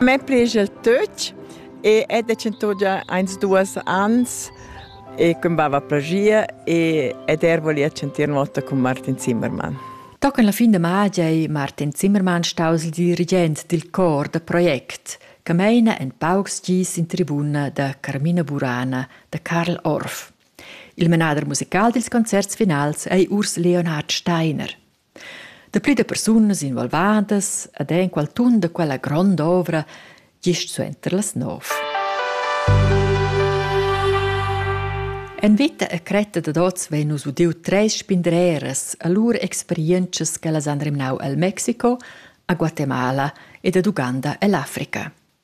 Me prigel töch e è decentò già eins duas ans e cumbava plagia e ed er voli accentir nota con Martin Zimmermann. Da con la fin de magia ei Martin Zimmermann staus il dirigent dil cor da project che meina en paucs gis in tribuna da Carmina Burana da Karl Orff. Il menader musical dils concerts finals ei Urs Leonhard Steiner. Dapü da persunas involvadas ed enqual tun da quella grond'ovra gist suenter las nov. En vita e cretta dad oz vein nus udiu treis spindreras a lur experientschas che las han remnau el Mexico, a Guatemala ed ad Uganda ell'Africa.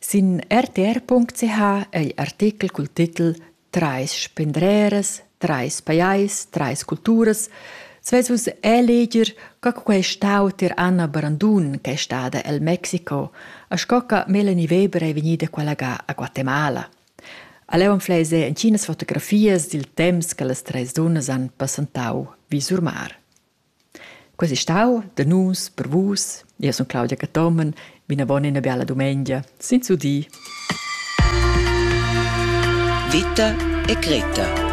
Sin rtr.ch ei artechel cul titel Trais spendreras, trais pajais, trais culturas svess vus eleger co quei stau tier Anna Brandun ch'ei stada el Mexico e sco che Melanie Weber ei vegnida collega a Guatemala. A leu anfleis ei entginas fotografias dil temps che las treis dunnas han passentau vi sur mar. Quei ei stau da nus, per vus. Io sun Claudia Cathomen, vinavon ina biala dumengia, senza dir. Vita e Greta